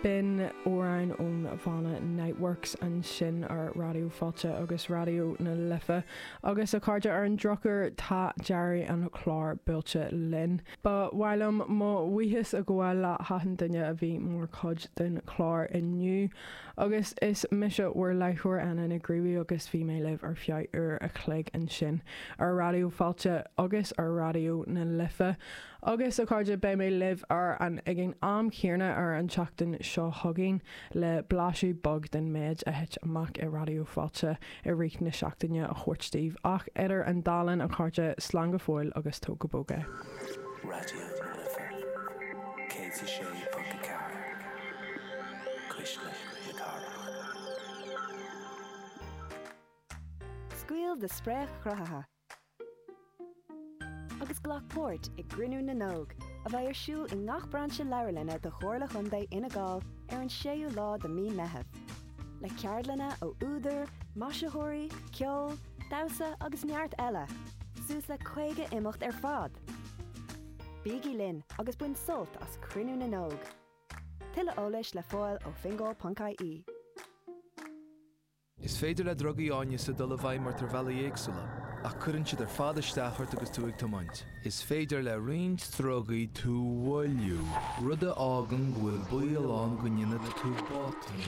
B'in amhráin ón bhanna Niteworks, ansin ar Raidió Fáilte agus Raidió na Life. Agus, a chairde, ar an drochuair, tá deireadh an chláir buailte linn. Ba mhaith liom mo bhuíochas a ghabháil le hachan duine a bhí mar chuid den chlár inniu. Agus is mise bhur láithreoir, Anna Nic Gríobhthaigh, agus bhí mé libh ar feadh uair a chloig ansin ar Raidió Fáilte agus ar Raidió na Life. Agus a chairde, beidh mé libh ar an, ag an am chéarna ar an tseachtain seo chugainn le blaiseadh beag den méid a thit amach i Raidió Fáilte i rith na seachtaine a thabhairt daoibh ach idir an dá linn, a chairde, slán go fóill agus tóg go bog é. Raidió na Life, 106.4, Cuisle na Cathrach. Scaoil do spréach chruthaithe. agus glac páirt i gCruinniú na nÓg, a bheidh ar siúl i ngach brainse leabharlainne de Chomhairle Chontae Fhine Gall ar an 6ú lá de mí an Meitheamh, le ceardlanna ó údair, maisitheoirí, ceol, damhsa agus neart eile, suas le 50 imeacht ar fad! Bígí linn agus bain sult as Cruinniú na nÓg! Tuilleadh eolais le fáil ó fingal.ie. Is féidir le drugaí áineasa dul i bhfeidhm ort ar bhealaí éagsúla, ach cuireann siad ar fad isteach ort agus tú ag tiomáint. Is féidir le roinnt drugaí tú a mhoilliú, rud a fhágann go bhfuil baol ann go ndéanfaidh tú botún.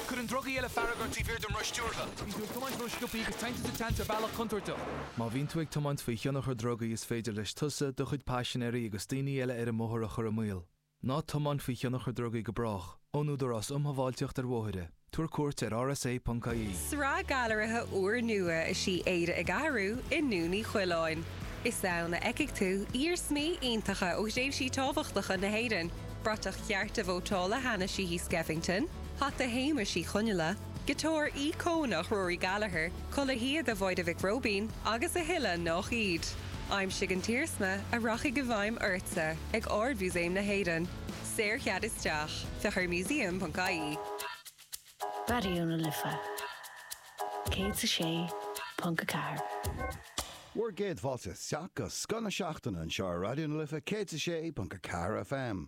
Cuireann drugaí eile fearg ort taobh thiar den roth stiúrtha. Bíonn tú ag tiomáint rósciobtha agus téann tú sa tseans ar bhealach contúirteach. Má bhíonn tú ag tiomáint faoi thionchar drugaí is féidir leis tusa, do chuid paisinéirí agus daoine eile ar an mbóthar a chur i mbaol. Ná tiomáin faoi thionchar drugaí go brách, ón Údarás um Shábháilteacht ar Bhóithre. Tabhair cuairt ar rsa.ie. Sraith gailearaithe úrnua is ea Éire ag Athrú i nDún Uí Choileáin. Is ann a fheicfidh tú iarsmaí iontacha ó thréimhsí tábhachtacha na hÉireann, bratach chearta vótála Hanna Sheehy Skeffington, hata Shéamais Uí Chonghaile, giotár íocónach Rory Gallagher, culaith shíoda Mháire Mhic Róibín agus a thuilleadh nách iad. Aimsigh an t-iarsma a rachaidh i bhfeidhm ortsa ag Ard-Mhúsaem na hÉireann. Saorchead isteach. Féach ar museum.ie. Raidió na Life 106.4. Bhur gcéad fáilte isteach go scoth na seachtaine anseo ar Raidió na Life 106.4 FM.